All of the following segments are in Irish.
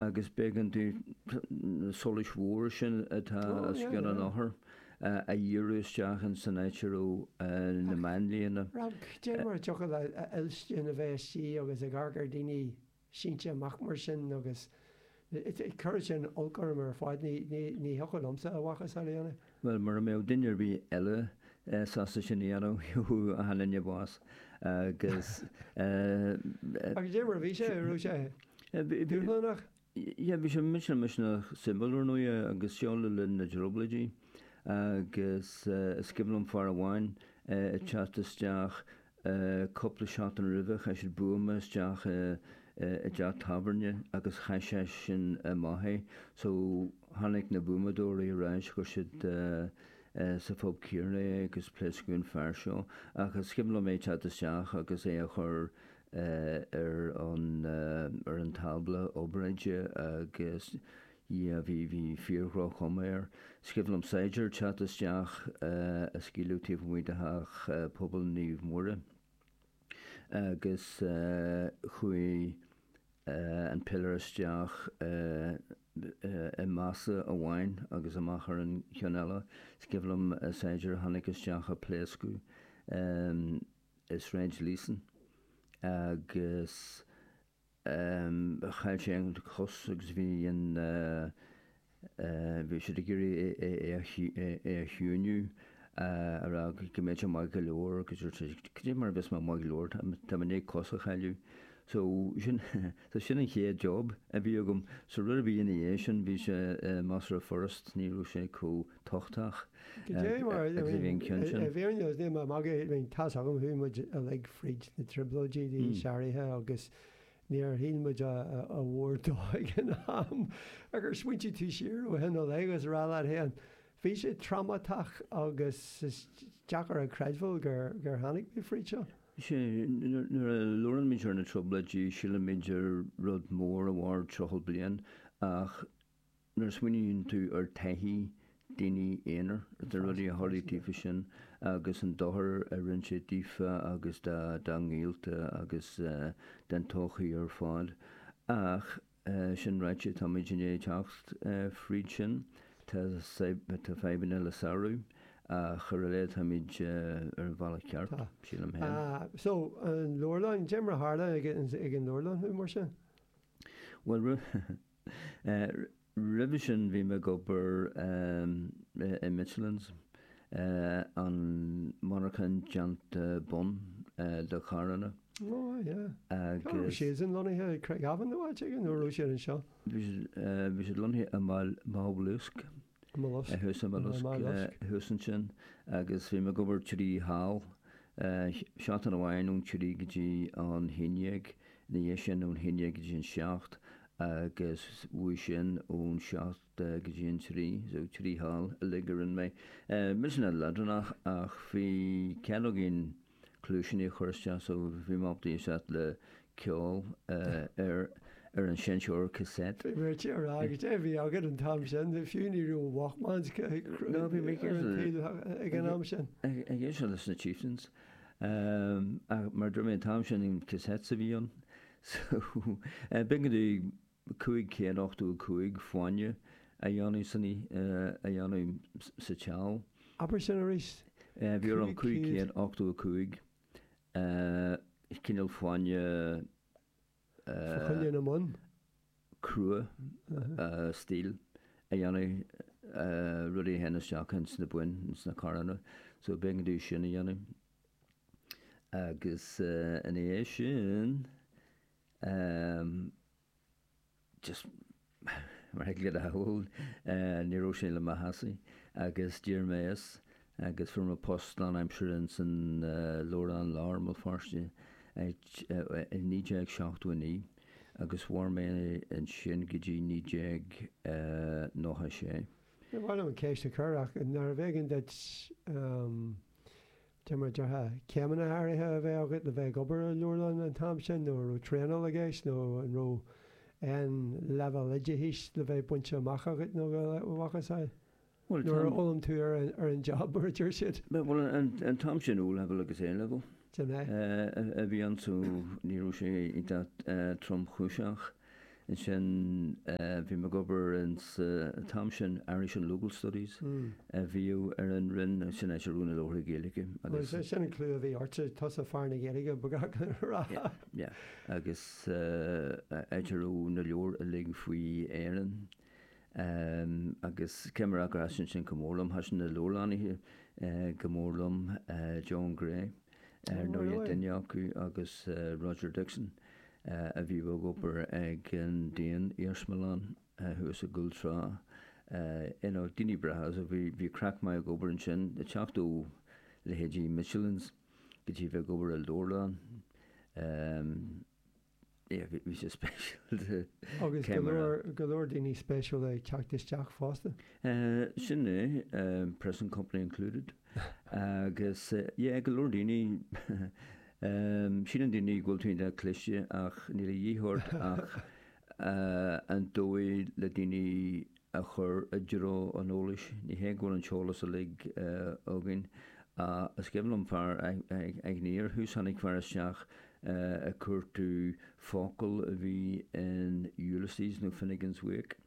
agus b'éigean di na solais mhóra sin atá os cionn an othair a dhíriú isteach ins an áit a raibh na máinlianna. Dé mar a thiocfadh le Oilsci ina bheith istigh agus ag amharc ar dhaoine sínte amach mar sin agus chuirfeadh sin olc orm ar fad, ní thiocfadh liomsa a mhacasamhail a dhéanamh. Bhuel, mura mbeadh duine ar bith eile sásta sin a dhéanamh, gheobhadh achan duine bás agus eh. Ach dé mar a bhí sé, raibh sé dúshlánach? Yeah, bhí sé millteanach suimiúil ar ndóighe agus seo le linn na dTrioblóidí agus eh, is cuimhin liom fear amháin eh, ag teacht isteach Cúpla seachtain roimhe chaith siad buama isteach i dteach tábhairne agus chaith seisean amach é so tháinig na buamadóirí ar ais, chuir siad sa phub céarna é agus pléascadh an fear seo. Ach is cuimhin liom é teacht isteach agus é a chur ar an tábla obráide agus Dhia bhí, bhí fíor-dhroch-chuma air. Is cuimhin liom saighdiúir teacht isteach a scaoileadh taobh amuigh de theach pobail Naomh Muire agus chuaigh an piléar isteach i más amháin agus amach ar an cheann eile. Is cuimhin liom saighdiúir a tháinig isteach a pléascadh i Sráid Líosain agus. Chaill sé an chos agus bhí an, bhí siad ag iarraidh é a chiúiniú, a rá go mbeadh sé maith go leor agus dúirt sé cad é mar a bheas mé maith go leor, tá mé i ndiaidh cos a chailleadh. So sin, so sin an chéad job a bhí agam. So rud a bhí ina dhiaidh sin, bhí sé, measartha furast, ní raibh sé chomh, tochtach a bhí an ceann sin. I bhfírinne is níl mé ag magadh, tá a fhios agam, chuaigh muid uilig fríd na trioblóidí, d'aois áirithe agus níor shíl muid a mhór de ag an am. Ach ar smaointigh tú siar ó shin i leith, is rá leat féin, bhí sé trámatach agus is deacair a chreidbheáil gur tháinig mé fríd seo. Sea, nuair a labhraímid ar na trioblóidí, sílimid ar rud mór a mhair 30 bliain ach nuair a smaoiníonn tú ar taithí daoine aonair, na rudaí a tharlaigh daofa sin agus an dochar a rinne sé daofa agus dá ngaolta agus don todhchaí ar fad. Ach sin ráite, táimid i ndiaidh teacht fríd sin. Tá fadhbanna le sárú ach ar a laghad táimid ar an bhealach ceart, sílim féin. So, an leabharlann, dé mar a tharla ag an leabharlann thú mar sin? Bhuel, rud. Roimhe sin bhí mé ag obair i Michelin's, an monarcha déanta bonn do charranna. Ó yeah. Cá raibh siad sin lonnaithe, Craigavon nó áit éigin nó raibh siad anseo? Bhí siad lonnaithe i Maigh Bhloisce. Mollusc. Thuas an Mhollusc, thuas ansin agus bhí mé ag obair trí sheal, seachtain amháin ón trí go dtí an haon dhéag, ina dhiaidh sin ón haon dhéag go dtí an seacht agus uaidh sin ón seacht go dtí an trí, so trí sheal uilig a rinne mé. Bhí sé an-leadránach ach bhí cead againn, Cluaisíní a chur isteach so bhí mé ábalta éisteacht le ceol ar ar an seinnteoir cassette. Bhí mé ar tí a rá cad é a bhí agat an t-am sin, fiú ní raibh Walkmans ag an am sin. Ag éisteacht leis na Chieftains mar dúirt mé an t-am sin cassette a bhí ann so b'éigean dúinn Bhí 585 fáinne a dhéanamh san a dhéanamh sa tseal. Abair sin arís. Bhí orm 585 cineál fáinne a Fa choinne na mbonn? cruach steel a dhéanamh rudaí a théann isteach ins na boinn, ins na carranna. So b'éigean dúinn sin a dhéanamh. Agus ina dhiaidh sin. just mar ag Gaeilgeoir bhuel ní raibh sé le mo leas agus d'éirigh mé as agus fuair mé post lán aimsire ins an Leabharlann Láir i mBéal Feirste i 1979 agus mhair mé ansin go dtí 1996. Bhuel, b'amaideach an cheist a chur ach narbh éigin duit Cad é mar a déarfá, Céimeanna áirithe a bheith agat le bheith ag obair i leabharlann an t-am sin nó an raibh traenáil i gceist nó an raibh aon leibhéal oideachais le bheith bainte amach agat nó a mhacasamhail nó ar fhoghlaim tú ar an job mar a deir siad. Bhuel an t-am sin O level agus A level a bhí ann so ní raibh sé iontach tromchúiseach. ansin bhí mé ag obair ins an t-am sin Irish and Local Studies a bhíodh ar an roinn agus sin an áit a raibh na leabharthaí Gaeilge agus. Bhuel sin an clú a bhí ortsa, tusa fear na Gaeilge mar a déarfá. Yeah, yeah agus an áit a raibh na leabhair uilig faoi Éirinn. Agus cad é mar a déarfá thaitin sin go mór liom, thaitin na leabharlannaithe go mór liom, John Gray ar ndóigh, duine acu agus Roger Dixon a bhí ag obair ag an Daon-Iarsmalann thuas i gCúl Trá. You know, daoine breátha agus bhí craic maith ag obair ansin, ag teacht ó leithéidí Michelins go dtí bheith ag obair i Leabharlann. Bhí sé spéisiúil. Agus go leor, go leor daoine spéisiúil ag teacht isteach fosta. Sin é, present company included. Agus, yeah, go leor daoine. Síleann daoine go bhfuil tú iontach cliste ach níl a dhíth ort ach an dóigh le daoine a chur i dtreo an eolais. Ní hé go bhfuil an t-eolas uilig againn, ach is cuimhin liom fear, agus ní ar thús, tháinig fear isteach ag cuartú focal a bhí in Ulysses nó Finnegans Wake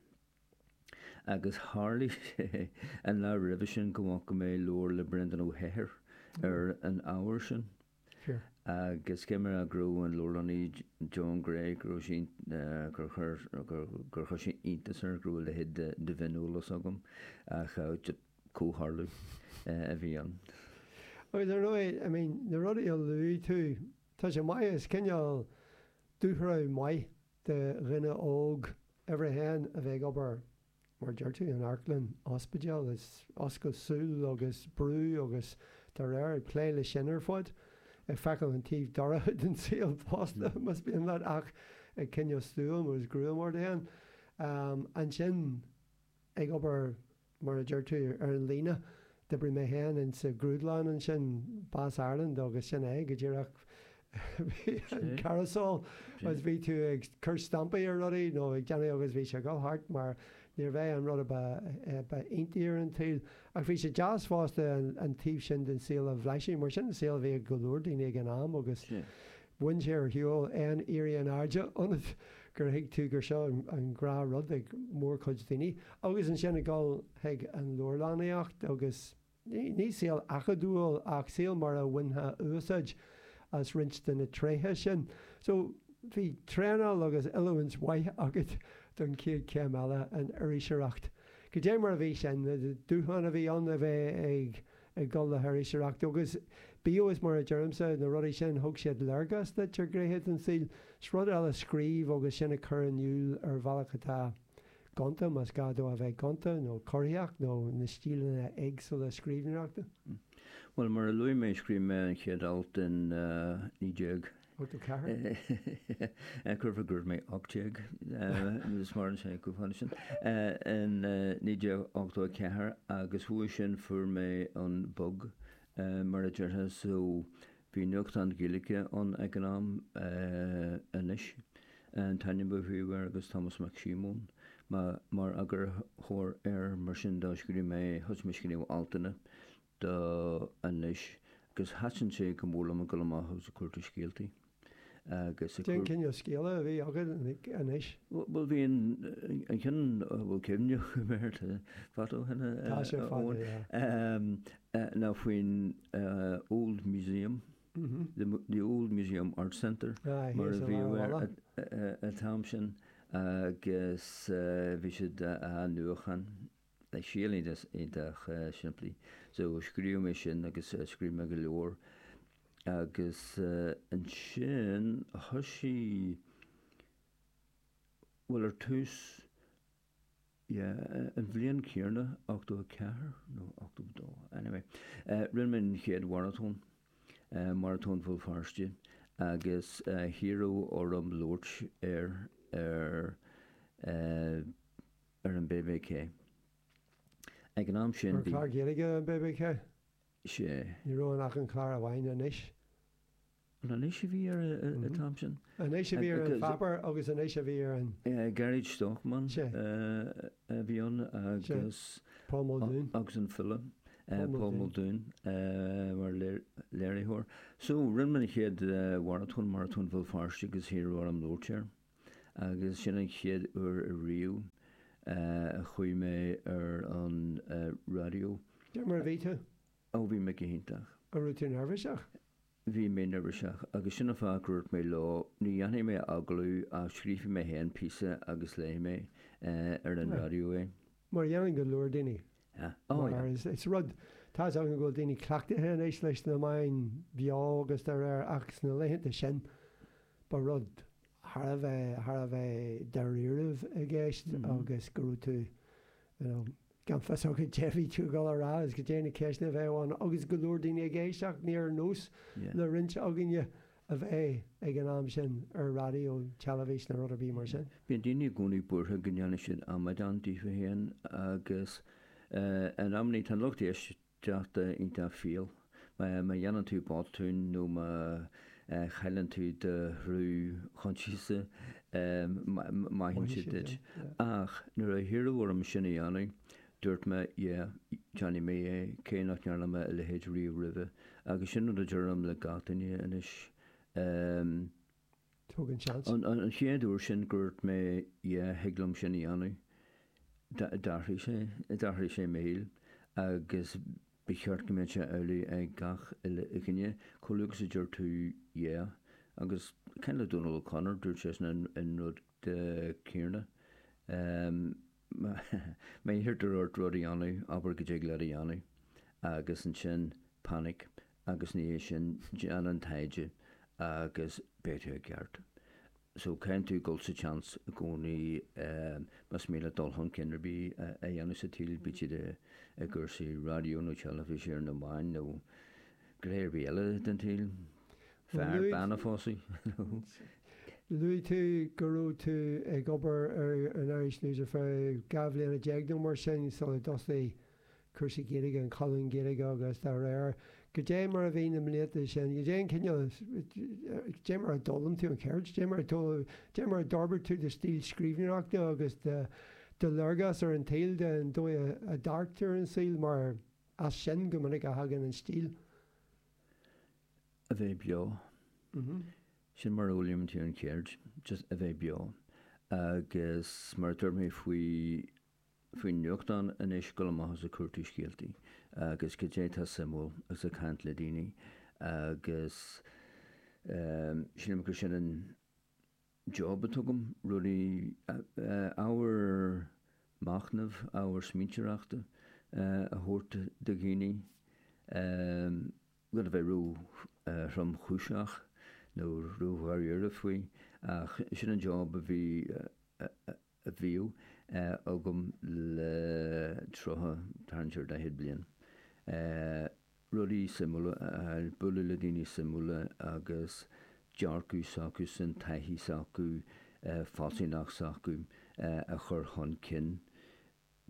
agus tharlaigh sé an lá roimhe sin go bhfaca mé leabhar le Breandán Ó hEithir ar an ábhar sin. Agus is cuimhin liom go raibh an leabharlannaí Joan Gray, go raibh sí, gur chuir, gur chuir sé iontas air go raibh a leithéid de mhioneolas agam ach comhtharlú a bhí ann. Bhuel, ar ndóigh, I mean, na rudaí a luaigh tú, tá sé maith, is cineál dúshraith mhaith do dhuine óg, uimhir a haon, a bheith ag obair mar a deir tú in otharlann, ospidéal, is oscailt súl agus brú agus dá réir, ag plé le sin ar fad. Ag feiceáil an taobh dorcha den tsaol fosta, más mian leat, ach ag coinneáil stiúir agus greim ort féin. Ansin, ag obair, mar a deir tú, ar an líne, D'oibrigh mé féin insa ghrúdlann ansin, Bass Ireland, agus sin é, go díreach, bhí an carousel agus bhí tú ag cur stampaí ar rudaí nó ag déanamh agus bhí sé ag dhul thart mar níorbh é an rud a ba iontaí ar an tsaol. Ach bhí sé deas fosta an taobh sin den saol a bhlaiseadh mar sin an saol a bhí ag go leor daoine ag an am agus Bhain sé ar shiúl aon éirí in airde ionat gur thuig tú gur seo an gnáthrud ag mórchuid daoine agus ansin ag dul chuig an leabharlannaíocht agus ní saol acadúil ach saol mar a bhainfeá úsáid as roinnt de na tréithe sin so bhí traenáil agus oiliúint mhaith agat don chéad chéim eile, an iriseoireacht. Goidé mar a bhí sin, na dúshláin a bhí ann a bheith ag. ag dul le hiriseoireacht agus b'fhéidir is mar a deirimse, na rudaí sin, thug siad léargas duit ar ghnéithe den saol, 's rud eile scríobh agus sin a chur in iúl ar bhealach atá gonta, más gá dó a bheith gonta, nó corraitheach, nó na stíleanna éagsúla scríbhneoireachta. Bhuel, mar a luaigh mé, scríobh mé an chéad alt in 19. Déarfainn go raibh mé 18, nó mar sin, in 1984 agus uaidh sin fuair mé an bug, mar a déarfá, so bhí nuachtán Gaeilge ann ag an am, Anois an t-ainm a bhí air agus Tomás Mac Síomóin mar eagarthóir air, mar sin do scríobh mé, thosaigh mé ag scríobh altanna do anois agus thaitin sé go mór liom ag dul amach agus ag cuartú scéaltaí agus ag cur. Cén cineál scéala a bhí agat anois? Bhuel bhí an an cheann a bhfuil cuimhne agam air tá fad ó shin Tá sé fada, Eoin. yeah. Ná faoin Old Museum, the Old Museum Art Centre Aye, mar yes, a bhí air ar an t-am sin agus bhí siad á nuachóiriú Scéal iontach simplí. So scríobh mé sin agus scríobh mé go leor agus ansin thoisigh, bhuel ar tús, yeah, an bhliain chéanna, ochtó a ceathair nó ochtó a dó, anyway, rinne mé an chéad mharatón, Maratón Bhéal Feirste agus hiarradh orm labhairt air ar, ar an BBC. Ag an am sin, An bhí. clár Gaeilge ar an BBC? Sea. Ní raibh ann ach an clár amháin, Anois. Anois a bhí air an t-am sin? Anois a bhí ar an pháipéar agus Anois a bhí ar an. Gearóid Stockman a bhí ann agus. Paul Muldoon. Agus an file. Paul Muldoon mar léiritheoir. So rinne mé an chéad mharatón, Maratón Bhéal Feirste agus hiarradh orm labhairt air. agus sin an chéad uair ariamh a chuaigh mé ar an raidió. Cad é mar a bhí tú? Ó bhí mé go hiontach. An raibh tú neirbhíseach? Bhí mé neirbhíseach agus sin an fáth gur dúirt mé leo ní dhéanfaidh mé agallamh ach scríobhfaidh mé féin píosa agus léifidh mé ar an raidió é. Mar a dhéanann go leor daoine. Mar is rud, tá's agam go bhfuil daoine cleachtaithe anois leis na meáin bheo agus dá réir ach sna laethanta sin ba rud thar a bheith, thar a bheith dáiríre a bhí i gceist agus go raibh tú, you know, gan fios agat cad é a bhí tú ag dul a rá agus goidé na ceisteanna a bheith ann agus go leor daoine ag éisteacht, níor nós le roinnt againne a bheith ag an am sin ar raidió, teilifís nó rud ar bith mar sin. Bíonn daoine i gcónaí buartha go ndéanfaidh siad amadán díofa féin agus in amannaí tá an lucht éisteachta iontach fial. Má dhéanann tú botún nó má chailleann tú do shruth coinsiasa maithfidh siad duit. Ach nuair a hiarradh orm sin a dhéanamh, Dúirt mé, Yeah, déanfaidh mé é, cé nach ndearna mé a leithéid riamh roimhe. Agus sin rud a deirim le gach duine anois. Em. Tóg an seans. An chéad uair sin gur dhúirt mé Yeah, thig liom sin a dhéanamh, d'athraigh sé. D'athraigh sé mo shaol. Agus ba cheart go mbeadh sé amhlaidh ag gach uile dhuine. Chomh luath agus a deir tú Yeah. Agus ag caint le Dónal O'Connor, dúirt seisean an rud céanna. Em. Má iarrtar ort rud a dhéanamh, abair go dtig leat a dhéanamh, agus ansin panic, agus ina dhiaidh sin déan an taighde agus beidh tú i gceart. So caitheann tú dul sa tseans i gcónaí más mian leat dul chun cinn ar bith a dhéanamh sa tsaol, bíodh sé i gcúrsaí raidió nó teilifíse nó na meáin nó. gné ar bith eile den tsaol, fear, bean a phósadh, nó. Luaigh tú go raibh tú ag obair ar an Irish News ar feadh dhá bhliana déag nó mar sin sular thosaigh cúrsaí Gaeilge, an colún Gaeilge agus dá réir. Goidé mar a bhí na blianta sin? Goidé an cineál, goidé mar a d'fhoghlaim tú an cheird? Goidé mar a d'fhoghlaim, mar a d'fhorbair tú do stíl scríbhneoireachta agus do léargas ar an tsaol den dóigh a ndearctar an saol mar. As sin go minic a thagann an stíl. A bheith beo. Sin mar a fhoghlaimíonn tú an cheird, just a bheith beo. Agus mar a dúirt mé faoi, faoin nuachtán anois, dul amach is ag cuartú scéaltaí agus goidé atá suimiúil agus ag caint le daoine agus sílim gur sin an, Job atá againn, rudaí, ábhar machnaimh, ábhar smaointeoireachta a thabhairt do dhaoine gan a bheith ró-thromchúiseach nó ró-dháiríre faoi ach sin an job a bhí a bhíodh agam le tríocha, tarraingt ar dhaichead bliain, rudaí suimiúla a fháil, bualadh le daoine suimiúla agus dearcadh s'acusan, taithí s'acu, fealsúnacht s'acu a chur chun cinn.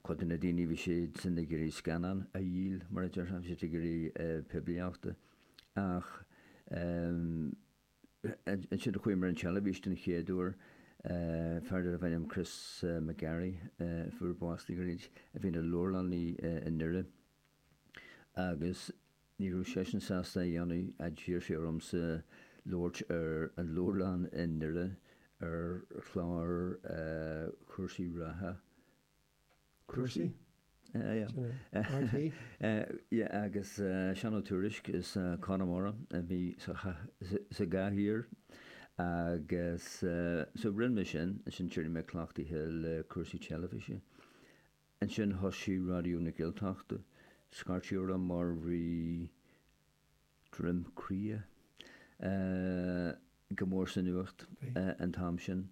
Cuid de na daoine bhí siadsan ag iarraidh scannán a dhíol, mar a déarfá, bhí siad ag iarraidh poiblíochta ach Ansin chuaigh mé ar an teilifís den chéad uair. Fear darbh ainm Chris McGarry a fuair bás le gairid a bhí ina leabharlannaí i nDoire. Agus ní raibh seisean sásta é a dhéanamh, d'iarr sé ormsa labhairt ar an leabharlann i nDoire ar chlár cúrsaí reatha. Cúrsaí? Sea, agus Seán Ó Tuairisg as Conamara a bhí sa gcathaoir agus so rinne mé sin, ansin d'éirigh mé cleachtaithe le cúrsaí teilifíse. Ansin thosaigh Raidió na Gaeltachta, ag scairteadh orm mar bhí, Droim Cria. Eh, go mór sa nuacht an t-am sin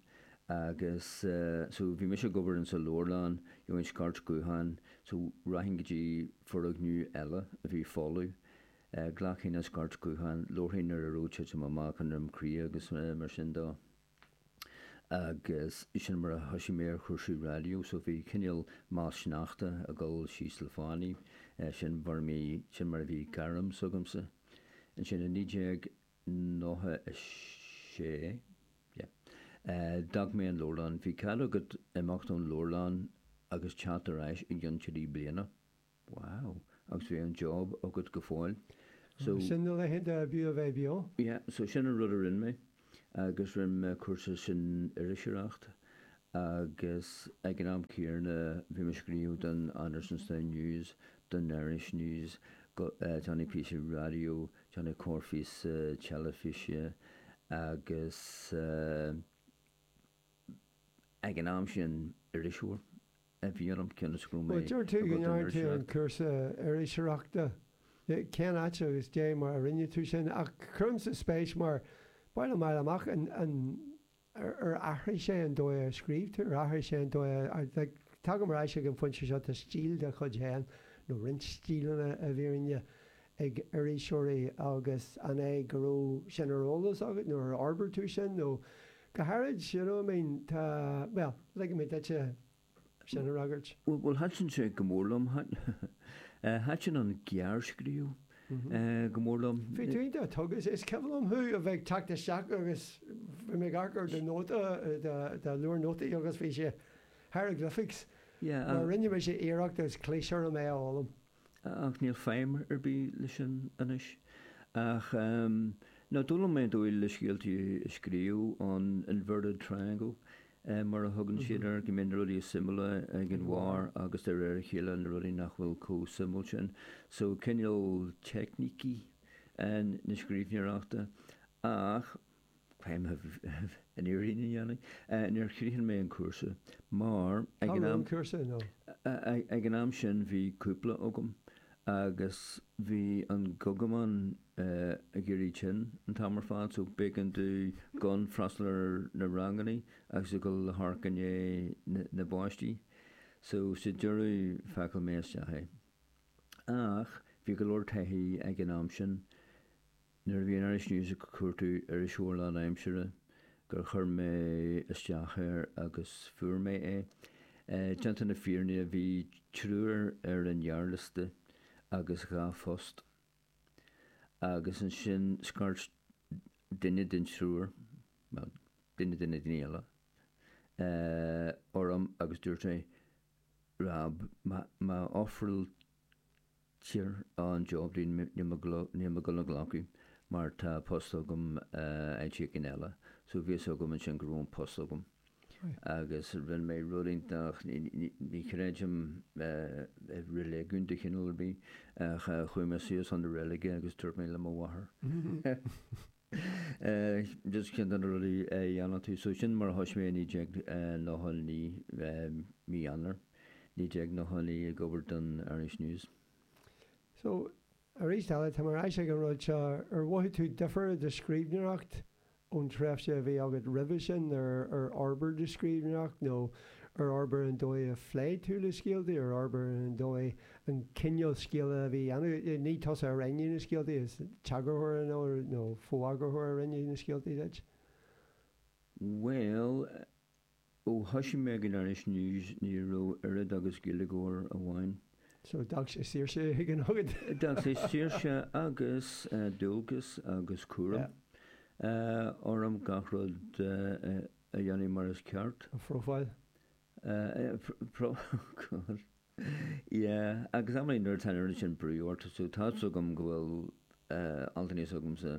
agus eh, so bhí mise ag obair ins an leabharlann, gheobhainn scairt ghutháin, so rachainn go dtí foirgneamh eile a bhí folamh. Eh, ghlacfainn an scairt ghutháin, labharfainn ar a raibh ag titim amach i nDroim Cria agus mar sin de. Agus sin mar a thoisigh mé ar chúrsaí raidió. So bhí cineál meall sneachta ag dul síos le fánaí. Sin mar a bhí, sin mar a bhí gairm s'agamsa. Ansin i 1996, yeah, d'fhág mé an leabharlann. Bhí cead agat imeacht ón leabharlann agus teacht ar ais i gcionn trí bliana. Wow. Agus bhí an job agat go fóill. So. Sin na laethanta a bhí a bheith beo. Yeah, so sin an rud a rinne mé agus rinne mé cúrsa san iriseoireacht agus ag an am céanna bhí mé ag scríobh don Andersonstown News, don Irish News, déanamh píosa raidió, déanamh corrphíosa teilifíse agus eh. Ag an am sin, iriseoir a bhí orm cionn is go raibh mé Dúirt tú go ndearna tú an cúrsa iriseoireachta. Cén áit agus cad é mar a rinne tú sin? Ach cuirimse spéis mar ba mhaith liom fháil amach an an ar ar athraigh sé an dóigh a scríobh tú, ar athraigh sé an dóigh a like tagaim ar ais ag an phointe seo tá stíl de chuid féin nó roinnt stíleanna i bhfírinne ag iriseoirí agus an é go raibh sin ar eolas agat nó ar fhorbair tú sin nó Go háirid, you know, I mean, tá, bhuel, ligfidh mé duitse sin a fhreagairt. Bhuel, bhuel, thaitin sé go mór liom, thaitin an gearrscríobh go mór liom. Bhí tú iontach tógtha, is cuimhin liom thú a bheith ag teacht isteach agus bhí mé ag amharc ar do nóta, do leabhar nótaí agus bhí sé hieroglyphics mar rinne mise iarracht agus chlis orm é a fhoghlaim. ach níl feidhm ar bith leis sin anois. Ach no, d'fhoghlaim mé an dóigh le scéaltaí a scríobh, an inverted triangle mar a thugann siad air, go mbíonn na rudaí is suimiúla ag an bharr agus de réir a chéile na rudaí nach bhfuil comh suimiúil sin. So cineál teicnící na scríbhneoireachta. Ach. Chun an fhírinne a dhéanamh, níor chríochnaigh mé an cúrsa mar ag an am, ag an am sin bhí cúpla agam agus bhí an gogamán ag éirí tinn an t-am ar fad so b'éigean domh gan freastal ar na rangannaí agus a dhul le hamharc i ndiaidh na bpáistí so sa deireadh phacáil mé isteach é. Ach bhí go leor taithí ag an am sin. Nuair a bhí an Irish News ag cuartú iriseoir lánaimsire gur chuir mé isteach air agus fuair mé é. Déanta na fírinne bhí triúr ar an ghearrliosta agus dhá phost. Agus ansin scairt duine den triúr, bhuel, duine de na daoine eile, orm agus dúirt sé, Rob, má ofráil Tír an Dioblin Níl mé ag gabháil a ghlacadh mar tá post agam áit éigin eile so bhí a fhios agam ansin go raibh an post agam agus rinne mé rud iontach ní chreidim i reiligiún de chineál ar bith ach chuaigh mé suas chun na reilige agus dúirt mé le mo mháthair Is iontach na rudaí a dhéanann tú so sin mar a thoisigh mé i 1999, mí Eanáir 1999 ag obair don Irish News. So, aríst eile, tá mé ar ais ag an rud seo, ar mhothaigh tú difear i do scríbhneoireacht ón tréimhse a bhí agat roimhe sin, ar fhorbair do scríbhneoireacht nó ar fhorbair an dóigh a phléigh tú le scéalta, ar fhorbair an dóigh an cineál scéil a bhí á dhéanamh. Ní tusa a roghnaigh na scéalta, is é an t-eagarthóir nó fo-eagarthóir a roghnaigh na scéalta duit. Bhuel, ó thoisigh mé ag an Irish News ní raibh oiread agus Gaeilgeoir amháin. So d'fhág sé saoirse éigin agat. D'fhág sé saoirse agus dualgas agus cúram orm gach rud a dhéanamh mar is ceart. A phrofáil. A phrofáil. Yeah, agus amannaí nuair atá an oiread sin brú ort, so tá 'fhios agam go bhfuil altanna s'agamsa,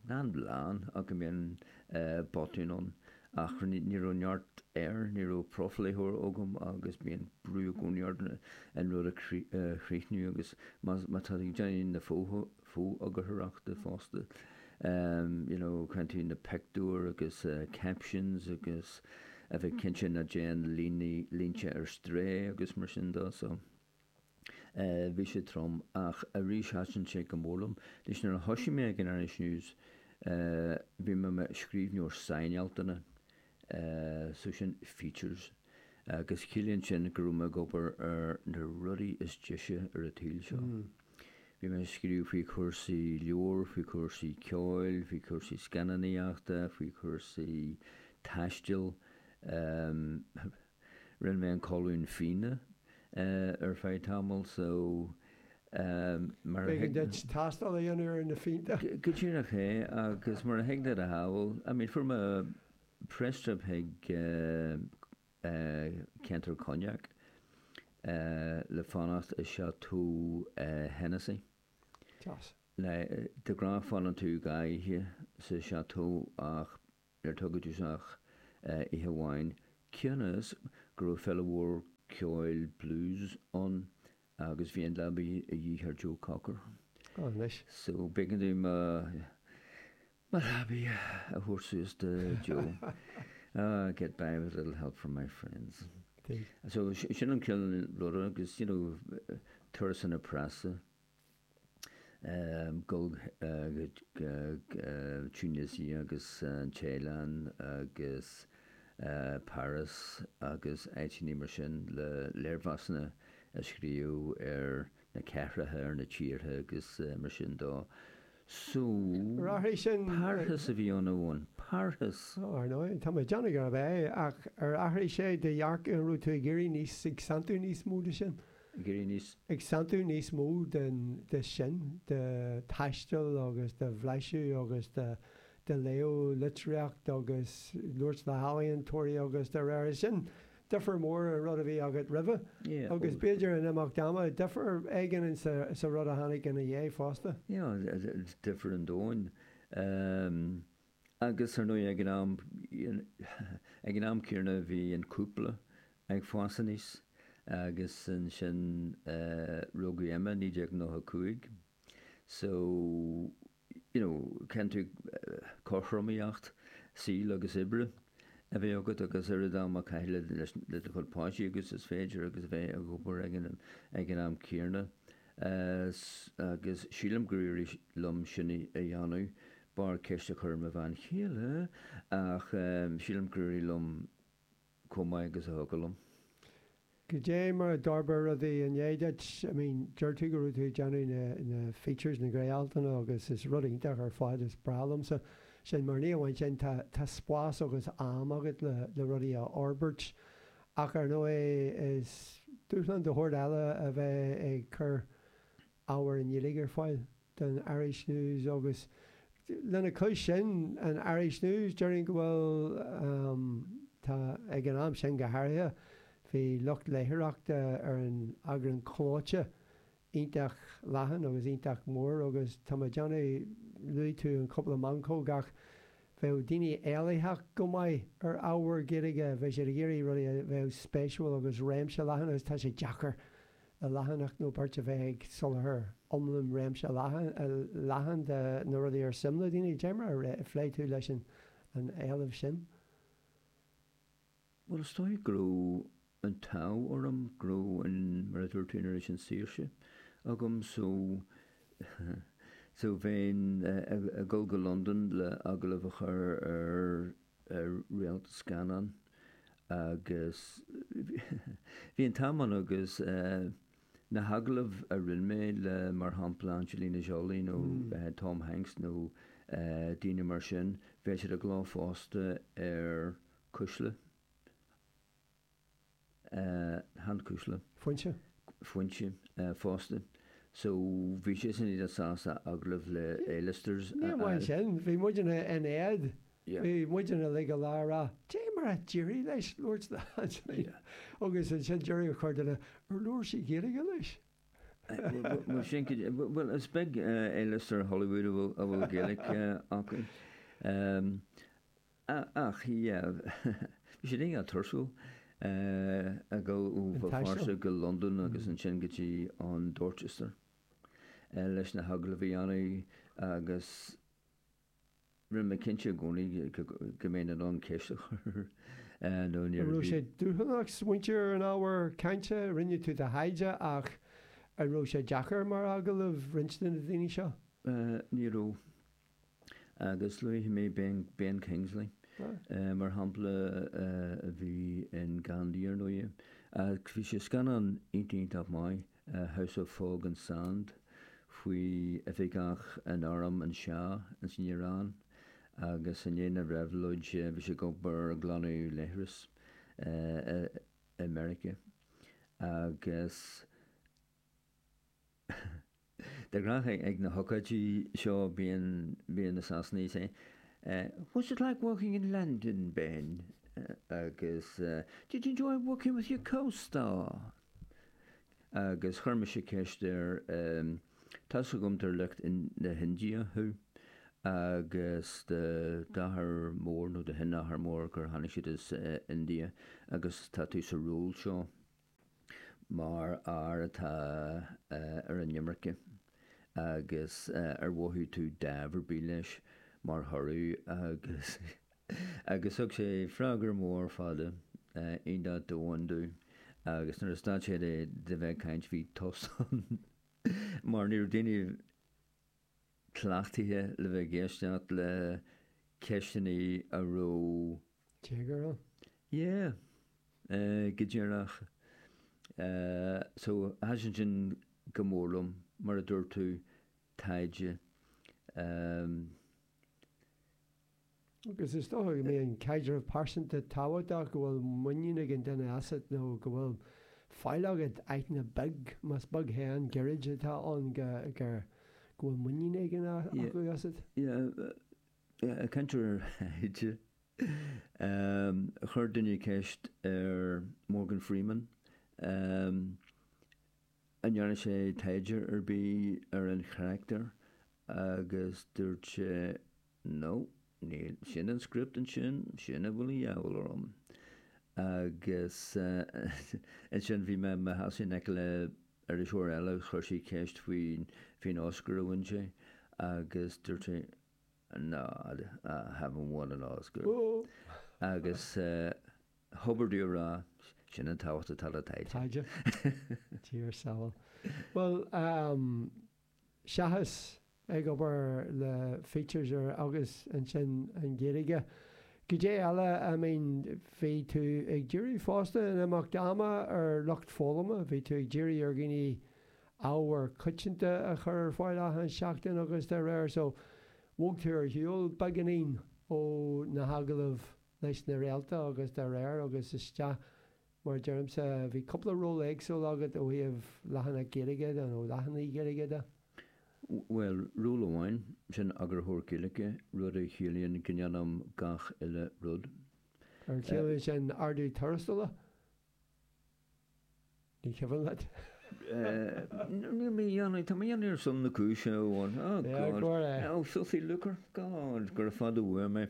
na an bhleán, ach go mbíonn botúin ann, ach ní raibh neart air, ní raibh profléitheoir agam agus bíonn brú i gcónaí ort an rud a chríochnú agus má tá tú ag déanamh na fo-eagarthóireachta fosta, you know, cinntiú na peictiúir agus captions agus a bheith cinnte nach dtéann líne, línte ar strae agus mar sin de so eh bhí sé trom ach arís thaitin sé go mór liom. Anois nuair a thoisigh mé ag an Irish News eh bhí mé mo scríbhneoir sainealtanna eh so sin features agus chiallaíonn sin go raibh mé ag obair ar na rudaí is deise ar an tsaol seo. Bhí mé ag scríobh faoi chúrsaí leabhar, faoi chúrsaí ceoil, faoi chúrsaí scannanaíochta, faoi chúrsaí taistil. Rinne mé an colún fíona ar feadh tamaill so mar a thig. B'éigean duit tástáil a dhéanamh ar na fíonta. Go díreach é agus mar a thig leat a shamhailt, I mean fuair mé press trip chuig ceantar Cognac le fanacht i Chateau Hennessy. Deas. De ghnáth fanann tú dhá oíche sa Chateau ach níor tugadh domhsa ach oíche amháin cionn is go raibh féile mhór ceoil blues ann agus bhí an leabaidh a dhíth ar Joe Cocker. Ó anois. So b'éigean dúinn Mar thapaidh a thabhairt suas do Joe. Ah, get by with a little help from my friends. So sin an chéad rud agus you know turasanna preasa ehm go Tunisia agus an Téalainn agus Paris agus áiteanna mar sin le léirmheasanna a scríobh ar na cathracha ar na tíortha agus mar sin de. Súil. Rachaidh sin. Parrthas a bhí ann uainn. Parrthas. Ar ndóigh, tá mé ag déanamh gurbh ea, ach ar athraigh sé do dhearcadh an raibh tú ag iarraidh níos, ag santú níos mó de sin? Ag iarraidh níos. Ag santú níos mó den, de sin, de taisteal agus de bhlaiseadh agus de, de léamh litríocht agus labhairt le healaíontóirí agus dá réir sin. difear mór ón rud a bhí agat roimhe Yeah, agus oh, b'fhéidir in imeacht ama difear éigin in sa, sa rud a tháinig ina dhiaidh fosta. yeah, d- d- d- difear an domhain. Um, agus ar ndóigh ag an am, you kn- ag an am céanna bhí an cúpla ag fás aníos agus ansin eh, rugadh Emma 1995 so, you know caithfidh tú cothromaíocht saoil agus oibre a bheith agat agus oiread ama a chaitheamh le le do chuid páistí agus is féidir agus bheith ag obair ag an ag an am céanna agus sílim gur éirigh liom sin a dhéanamh b'fhearr ceist a chur ar mo bhean chéile ach sílim gur éirigh liom chomh maith agus a thiocfadh liom. Goidé mar a d'fhorbair rudaí i ndiaidh duit, I mean, deir tú go raibh tú ag déanamh na, na features, na gné-altanna agus is rud iontach ar fad, is breá liomsa sin mar ní amháin sin, tá, tá spás agus am agat le, le rudaí a fhorbairt ach ar ndóigh is dúshlán de sheort eile a bheith ag cur, ábhar i nGaeilge ar fáil don Irish News agus lena chois sin an Irish News, déarfainn go bhfuil, tá, ag an am sin go háirithe, bhí lucht léitheoireachta ar an eagrán clóite iontach leathan agus iontach mór agus tá mé ag déanamh, luaigh tú an cúpla meancóg ach bheadh daoine éilitheach go maith ar ábhar Gaeilge, bheadh siad ag iarraidh rudaí a bheadh spéisiúil agus réimse leathan agus tá sé deacair. do leathanach nó beirt a bheith ag soláthar iomlán réimse leathan de na rudaí ar suim le daoine. Dé mar a phléigh tú leis an éileamh sin. Bhuel, is dóigh go raibh an t-ádh orm go raibh an, mar a dúirt tú anois, an saoirse agam so, so bheinn ag dul go Londain le agallamh a chur ar ar réalta scannán agus bhí an t-am ann agus na hagallaimh a rinne mé le mar shampla Angelina Jolie nó Tom Hanks nó daoine mar sin, bheadh siad i gcló fosta ar Cuisle. Chan Cuisle. Foinse? Foinse fosta. So bhí siadsan iontach sásta agallamh le A-listers a fháil. Níor bhain sin. Bhí muidne in éad. Bhí muidne uilig go léir ag rá, cad é mar a d'éirigh leis labhairt do Anthony. Agus ansin déarfadh corrdhuine ar labhair sí Gaeilge leis. Bhuel sin cad é. Bhuel is beag A-lister Hollywood a bhfuil Gaelic acu. A, ach yeah, bhí sé iontach tuirsiúil ag dul ó Bhéal Feirste go Londain agus ansin go dtí an Dorchester leis na hagallaimh a dhéanamh agus rinne mé cinnte i gcónaí go mbeinn in ann ceist a chur nó níor bhí. An raibh sé dúshlánach smaointiú ar an ábhar cainte, rinne tú do thaighde ach an raibh sé deacair mar agallamh roinnt de na daoine seo? Ní raibh. agus luafaidh mé Ben Kingsley mar shampla a bhí in Gandhi ar ndóigh ach bhí sé i scannán iontach maith House of Fog and Sand faoi oifigeach in arm an Shah in san Iaráin agus i ndiaidh na reabhlóide bhí sé ag obair ag glanadh leithreas i Meiriceá agus De ghnáth ag na hócáidí seo bíonn bíonn na Sasanaigh say what's it like working in London, Ben? agus did you enjoy working with your co-star? Agus chuir mise ceist air tá's agam gur de shliocht na hIndia thú agus do d'athair mór nó do shin-athair mór gur tháinig siad as India agus tá tú sa ról seo. Mar fhear atá ar an imirce agus ar mhothaigh tú dáimh ar bith leis mar thoradh agus agus thug sé freagra mór fada iontach domhain domh agus nuair a stad sé de bheith ag caint bhí tost ann mar ní raibh daoine cleachtaithe le bheith ag éisteacht le ceisteanna a raibh téagar ann. Yeah. Eh, go díreach. Eh, so thaitin sin go mór liom, mar a dúirt tú, taighde. Em. agus is dócha go mbíonn an caidreamh pearsanta tábhachtach, go bhfuil muinín ag an duine asat nó go bhfuil faill agat, aithne beag, más beag é an giorraid atá ann go bhfuil muinín éigin acu asat. Sea, caint ar thaighde. Chuir duine ceist ar Morgan Freeman an ndearna sé taighde ar bith ar an charachtar agus dúirt sé No, níl. Sin an script ansin, sin a bhfuil de dhíobháil orm. Agus ansin bhí mé i mo sheasamh in aice le iriseoir eile agus chuir sí ceist faoin Oscar a bhain sé agus dúirt sé No, I haven't won an Oscar. Agus thobair dó a rá, sin an tábhacht atá le taighde. Taighde, tír, samhail. Bhuel, seachas ag obair le features agus ansin an Ghaeilge. Goidé eile I mean bhí tú ag díriú fosta in imeacht ama ar lucht foghlama, bhí tú ag díriú ar dhaoine ábhair coitianta a chur ar fáil achan seachtain agus de réir so bhog tú ar shiúl beagáinín ó na hagallaimh leis na réalta agus de réir agus isteach Mar a deirimse, bhí cúpla ról éagsúil agat ó thaobh leathanach Gaeilge de, nó leathanaigh Ghaeilge de. Bhuel, ról amháin, sin Eagarthóir Gaeilge, rud a chiallaíonn go ndéanaim gach uile rud. Ar chiallaigh sin ardú tuarastail? Nach cuimhin leat? Tá mé á dhéanamh ar son na cúise, a Eoin. Oh, God. Go raibh maith agat. Oh, filthy lucre. God, gura fada uaim é.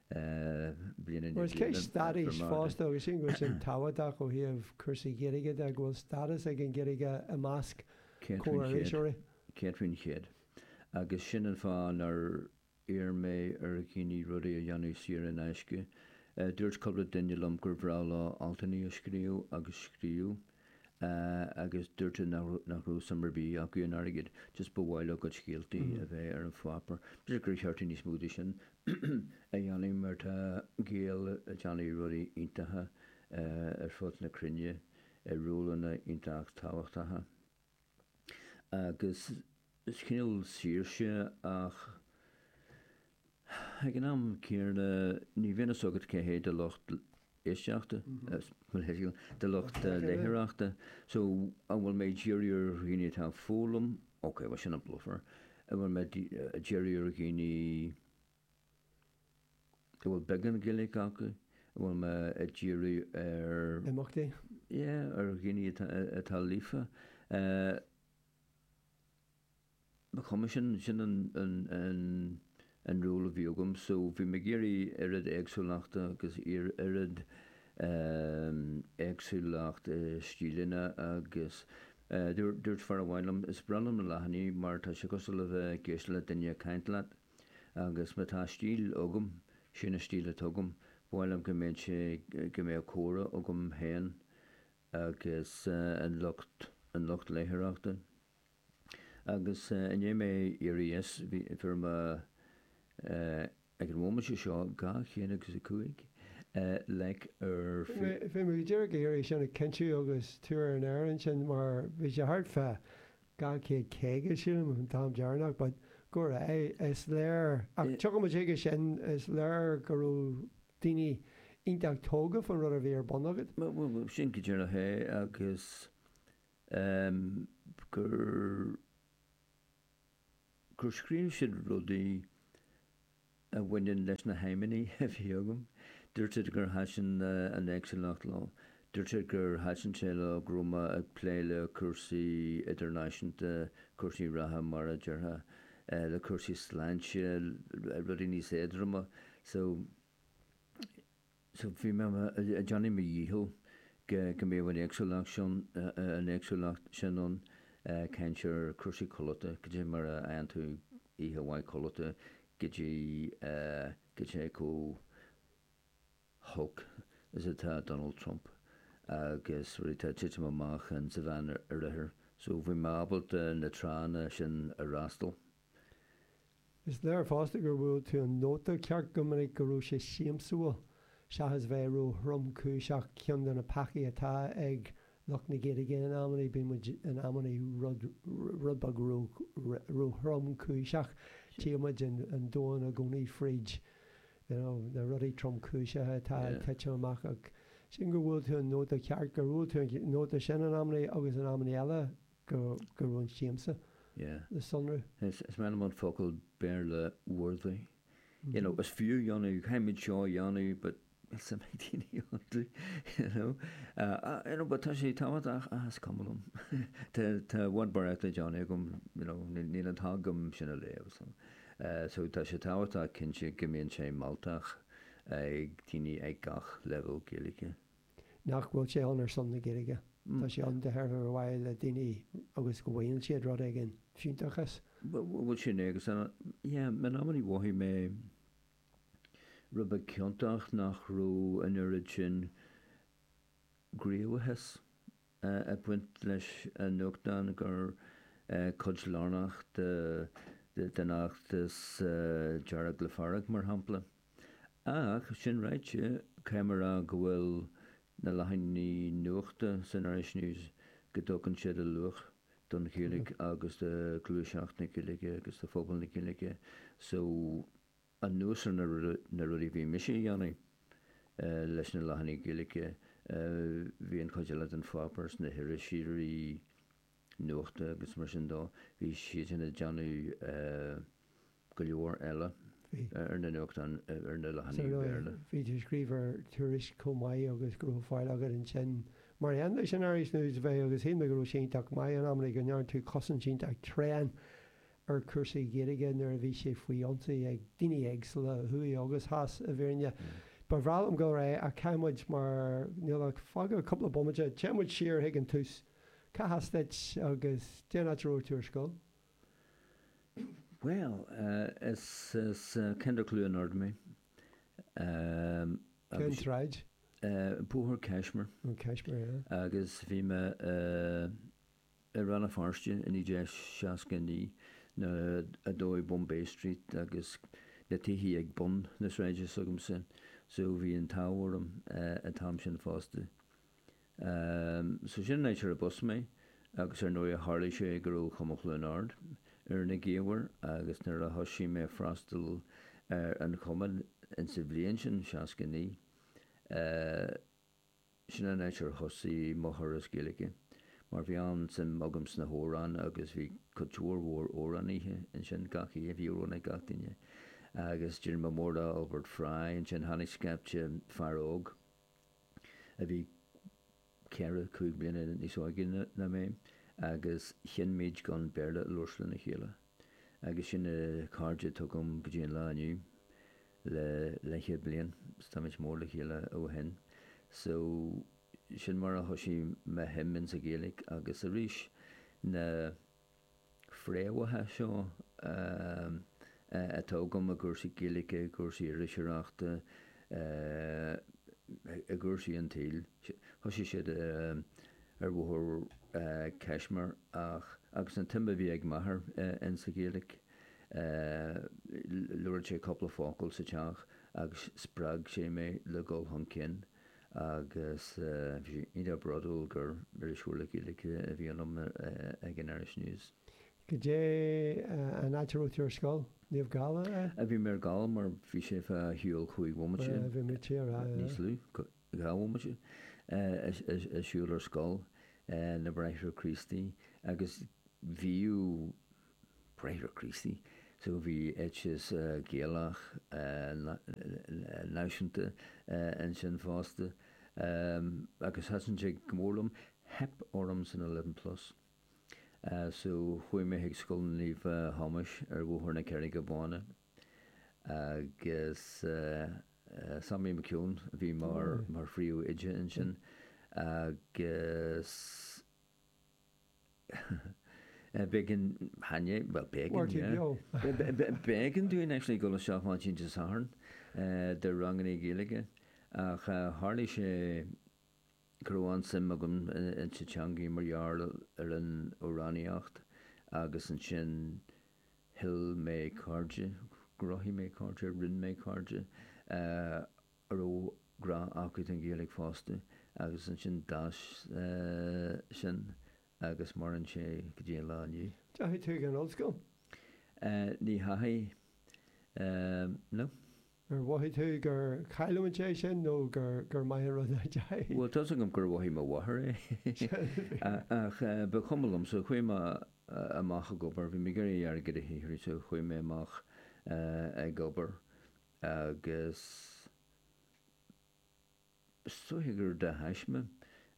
bliana Bhfuil ceist stádais fosta agus sin go bhfuil sé tábhachtach ó thaobh cúrsaí Gaeilge de go bhfuil stádas ag an Ghaeilge i measc comhiriseoirí. Cinnte, cinnte. Agus sin an fáth nár iarr mé ar dhaoine rudaí a dhéanamh saor in aisce. Dúirt cúpla duine liom gur bhreá leo altanna a scríobh agus a scríobh. agus dúirt siad nach raibh suim ar bith acu in airgead, just ba mhaith leo a gcuid scéaltaí a bheith ar an pháipear. B'fhéidir gur cheart níos mó de sin a dhéanamh mar tá Gaeil ag déanamh rudaí iontacha ar fud na cruinne i rólanna iontach tábhachtacha. agus cineál saoirse ach ag an am céarna ní bhíonn a fhios agat cé hé do lucht éisteachta, do lucht léitheoireachta. So an bhfuil mé ag díriú ar dhaoine atá ag foghlaim, ok bhuel sin an bluffer, an bhfuil mé ag díriú ar dhaoine a bhfuil beagán Gaeilge acu, a bhfuil mé ag díriú ar. imeachtaí. Yeah, ar dhaoine atá, atá líofa. Ba chuma, sin, sin an, an, an, an rún a bhí agam. So bhí mé ag iarraidh oiread éagsúlachta agus oiread éagsúlacht i stíleanna agus dúirt, dúirt fear amháin liom, is breá liom na leathanaigh mar tá sé cosúil le bheith ag éisteacht le duine ag caint leat. Agus má tá stíl agam, sin an stíl atá agam. Ba mhaith liom go mbeadh sé, go mbeadh comhrá agam féin agus an lucht, an lucht léitheoireachta. Agus i ndiaidh mé éirí as, bhí, fuair mé ag an mhóiminte seo dhá chéad agus a cúig like ar Facebook. Bhí mé go díreach ag iarraidh sin a chinntiú agus tú ar an aer ansin mar bhí sé thart fá, 250, sílim, an t-am deireanach, but go raibh, is léir, ach tiocfaidh muid chuige sin, is léir go raibh daoine iontach tógha faoin rud a bhí ar bun agat. Bhuel, sin go díreach é agus gur, gur scríobh siad rudaí. a bhaineann leis na haidhmeanna a bhí agam. Dúirt siad gur thaitin an éagsúlacht leo. Dúirt siad gur thaitin sé leo go raibh mé ag plé le cúrsaí idirnáisiúnta, cúrsaí reatha mar a déarfá, le cúrsaí sláinte, rudaí níos éadroma. So, Bhí mé ag déanamh mo dhícheall go mbeadh an éagsúlacht sin, an éagsúlacht sin ann, caint ar chúrsaí codlata, go dtí mar a fhaigheann tú oíche mhaith codlata, go dtí, go dtí chomh holc is atá Donald Trump agus cad é atá ag titim amach in sa Mheánoirthear. So bhí mé ábalta na tránna sin a fhreastal. Is léir fosta gur bhuail tú an nóta ceart go minic go raibh sé siamsúil seachas bheith ró thromchúiseach. Ceann de na peacaí atá ag lucht na Gaeilge in amannaí, bíonn muid in amannaí rud beag ró thromchúiseach. Tchíonn muid an domhan i gcónaí fríd na rudaí tromchúiseacha atá ag titim amach. Ach sin gur bhuail tú an nóta ceart, go raibh tú ar an nóta sin in amannaí agus in amannaí eile go raibh an siamsa le sonrú. Is maith liom an focal Béarla worthy. You know, is fiú é a dhéanamh, caithfimid seo a dhéanamh but is a mbeidh daoine iontu, you know. You know, but tá sé tábhachtach, ah is cuma liom. Tá i bhfad barraíocht le déanamh agam, you know, níl an t-am agam sin a léamh. So tá sé tábhachtach cinnte go mbíonn sé mealltach ag daoine ag gach leibhéal Gaeilge. Nach bhfuil sé ann ar son na Gaeilge? Tá sé ann de thairbhe a bhaile le daoine agus go bhfaigheann siad rud éigin, fiúntachas? Bhuel sin é agus yeah, in amannaí mhothaigh mé rud beag ciontach nach raibh an oiread sin gníomhachas ag baint leis an nuachtán i gcuid lárnach den fheachtas Dearg le Fearg mar shampla. Ach sin ráite, caithfidh mé a rá go bhfuil na leathanaigh nuachta san Irish News, go dtugann siad a luach don Ghaeilge agus do ghluaiseacht na Gaeilge agus do phobal na Gaeilge. So, anuas ar na rudaí a bhí mise a dhéanamh leis na leathanaigh Gaeilge, bhí an chuid eile den pháipéar sna hiriseoirí, nuachta agus mar sin de. Bhí siadsan ag déanamh go leor eile ar na nuachtáin, ar na leathanaigh Bhéarla. Bhí tú ag scríobh ar Tuairisc chomh maith agus go raibh platform agat ansin mar aon leis an Irish News a bheith. Agus shíl mé go raibh sé iontach maith in amannaí go ndearna tú cosaint iontach tréan ar chúrsaí Gaeilge nuair a bhí sé faoi ionsaí ag daoine éagsúla, thuaidh agus theas, i bhfírinne. Ba bhreá liom dul tríd ach caithfidh muid, mar níl ach fágtha cúpla bomaite, téann muid siar chuig an tús. Cá has duit agus cén áit a raibh tú ar scoil. Bhuel, is as ceantar Chluain Ard mé. Cén tsráid? Bóthar Kashmir. An Kashmir, yeah. Agus bhí mé i Rann na Feirste i 1969 nuair a dódh Bombay Street agus na tithe ag bun na sráide s'agamsa so bhí an t-ádh orm an t-am sin fosta. So sin an áit arb as mé agus ar ndóigh tharlaigh sé go raibh Cumann Chluain Ard ar na gaobhair agus nuair a thoisigh mé ag freastal ar an chumann insa bhliain sin, 69, sin an áit ar thosaigh mo thuras Gaeilge mar bhí an-suim agam sna hamhráin agus bhí cultúr mór amhrán oíche ansin gach oíche, bhí amhrán ag gach duine agus d'éirigh mé mór le Albert Fry ansin, tháinig scaipte fear óg. a bhí ceithre, cúig bliana níos óige ná mé agus chinn muid gan Béarla a labhairt lena chéile. Agus sin na cairde atá agam go dtí an lá inniu, le leithchéad bliain, so tá muid mór le chéile ó shin. So, sin mar a thoisigh mo shuim ins an Ghaeilge agus arís na. fréamhaithe seo atá agam i gcúrsaí Gaeilge, i gcúrsaí iriseoireachta, i gcúrsaí an tsaoil. Thoisigh siad ar bhóthar Kashmir ach agus an tsuim a bhí ag m'athair insa Ghaeilge labhradh sé cúpla focal sa teach agus spreag sé mé le dhul chun cinn. agus bhí sé iontach bródúil gur iriseoir le Gaeilge a bhí ionam ag an Irish News. Goidé an áit a raibh tú ar scoil? Naomh Gall, ab é? Bhí mé ar Gall mar bhí sé fá shiúl cúig bhomaite, níos lú, dhá bhomaite, ag siúl ar scoil na mBráithre Críostaí agus bhíodh Bráithre Críostaí. So bhí eiteas Gaelach náisiúnta ansin fosta agus thaitin sé go mór liom. Theip orm san eleven plus so chuaigh mé chuig Scoil Naomh Thomáis ar Bhóthar na Carraige Báine agus Sammy McKeown a bhí mar phríomhoide ansin agus B'éigean, Áine, bhuel, b'éigean, yeah, b'éigean dúinn actually dul isteach maidin Dé Sathairn do ranganna Gaeilge ach tharlaigh sé go raibh an-suim agam insa teangaidh mar gheall ar an amhránaíocht agus ansin shíl mé cairde, chruthaigh mé cairde, rinne mé cairde. a raibh grá acu don Ghaeilge fosta agus ansin d'fhás sin agus maireann sé go dtí an lá inniu. An ndeachaigh tú chuig an ollscoil? Ní dheachaigh, no. Ar mhothaigh tú gur chaill tú an deis sin nó gur maith an rud a d'éirigh? Bhuel, tá's agam gur mhothaigh mo mháthair é ach ba chuma liom so chuaigh mé amach ag obair. Bhí mé ag iarraidh airgead a shaothrú so chuaigh mé amach ag obair. Agus is dóiche gur de thaisme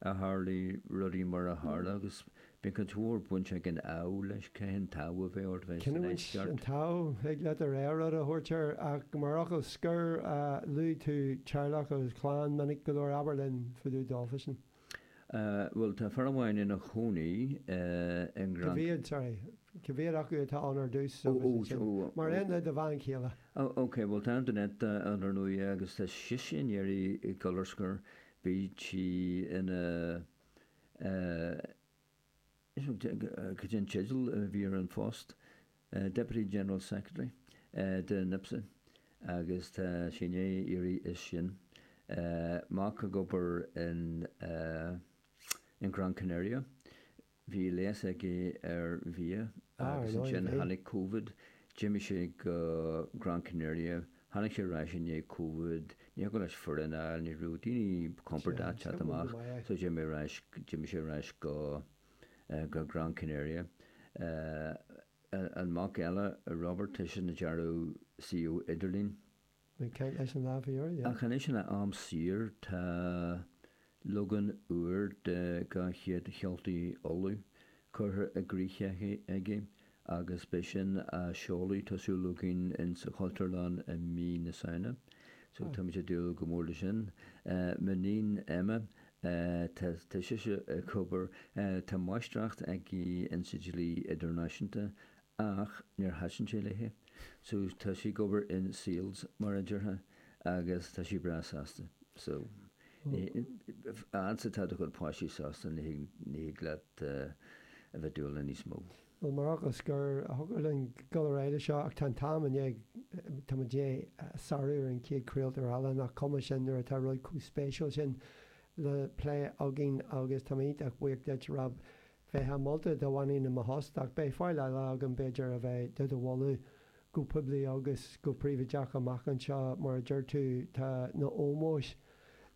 a tharlaigh rudaí mar a tharla agus bíonn cuid mhór baint ag an ádh leis, cibé an t-ádh a bheadh ort bheith sa Cinniúint an ndeisceart? An t-ádh, thig leat ar aon rud a thabhairt air ach mar fhocal scoir, luaigh tú teaghlach agus clann, minic go leor, abair linn faoi do dhá ghasúr. Bhuel, tá fear amháin ina chónaí i nGrán. Cibé, sorry, cibé acu atá ann ar dtús so bhí siad sin mar aon le do bhean chéile. Ok, bhuel tá Antoinette ann ar ndóigh agus tá sise i ndiaidh dul ar scor, bhí sí ina Cad é an teideal a bhí ar an phost Deputy General Secretary de NIPSA agus tá sí in éirí as ansin mac ag obair in Gran Canaria. Bhí léas aige ar bheár agus ansin tháinig covid, d'imigh sé go Gran Canaria. Tháinig sé ar ais i ndiaidh Covid, ní thiocfadh leis foireann a fháil, ní raibh daoine compordach teacht amach, so d'imigh ar ais, d'imigh sé ar ais go, go Gran Canaria. An mac eile, Robert, tá seisean ag dearadh suíomhanna idirlín. Ach anois ina am saor, tá, Leagan úr de Dhá Chéad Cheoltaí Uladh curtha i gcrích aige agus beidh sin á sheoladh, tá súil againn in sa Chultúrlann i mí na Samhna so táimid ag dúil go mór le sin. M'iníon Emma, tá sise ag obair, tá máistreacht aici in sa dlí idirnáisiúnta Ach níor thaitin sé léithe so tá sí ag obair in sales mar a déarfá agus tá sí breá sásta. So fhad 's atá do chuid páistí sásta ní thig leat a bheith ag dúil le níos mó. Bhuel mar a scoir, thiocfadh linn dul ar aghaidh le seo ach tá an t-am i ndiaidh, tá muid i ndiaidh sarú ar an chéad craoltóir eile nach cuma sin nuair atá rud chomh spéisiúil sin le plé againn agus táim iontach buíoch duit ar Bheith molta dá mbeinn i mo thost, ach beidh faill eile agam, b'fhéidir, a bheith do do mholadh go poiblí agus go príobhaideach amach anseo. Mar a deir tú, tá na ómóis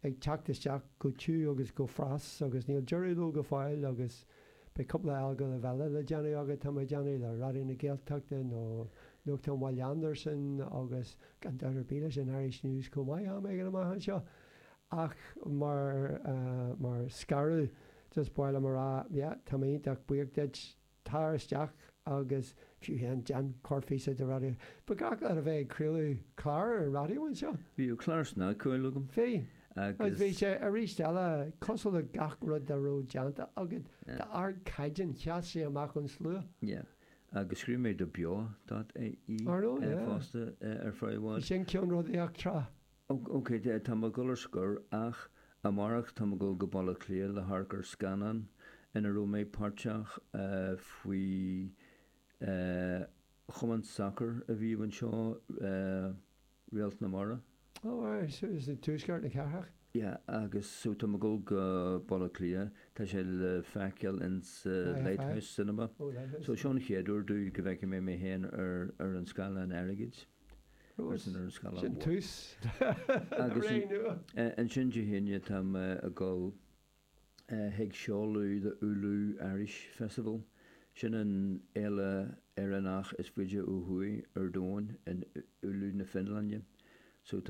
ag teacht isteach go tiugh agus go fras agus níl deireadh leo go fóill agus beidh cúpla agallamh eile le déanamh agat, táim ag déanamh, le Raidió na Gaeltachta nó nuachtán Bhaile Andarsan agus gan dabht ar bith leis an Irish News chomh maith, am éigin amach anseo. Ach mar, mar scaradh, just ba mhaith liom a rá, yeah, tá mé iontach buíoch duit, tar isteach agus fiú amháin, déan corrphíosa don raidió. Ba ghnách leat a bheith ag craoladh cláir ar an raidió anseo? Bhíodh cláir snagcheoil agam. Bhí. Agus bhí sé, aríst eile, cosúil le gach rud dá raibh déanta agat, d'ardchaighdeán, sheas sé amach ón slua. Yeah. Agus scríobh mé do Beo dot ie. Ar ndóigh, yeah. Fosta, ar feadh i bhfad. Bhí sin ceann rud eachtrach. Och, ok, tá mé ag dul ar scor ach amárach tá mé ag dul go Baile Átha Cliath le hamharc ar scannán ina raibh mé páirteach faoi chumann sacair a bhíodh anseo, Réalt na Mara. Oh, aye, as Tuaisceart na Cathrach? Yeah, agus so tá mé ag dul go Baile Átha Cliath, tá sé le feiceáil sa Light House Cinema. Oh, Light House. So seo an chéad uair domh go bhfeicfidh mé mé féin ar an scáileán airgid. Sin tús na ré nua. Ansin Dé hAoine tá mé ag dul chuig seoladh the Oulu Irish Festival. Sin an fhéile Éireannach is faide ó thuaidh ar domhain, in Oulu na Fionlainne. So tá.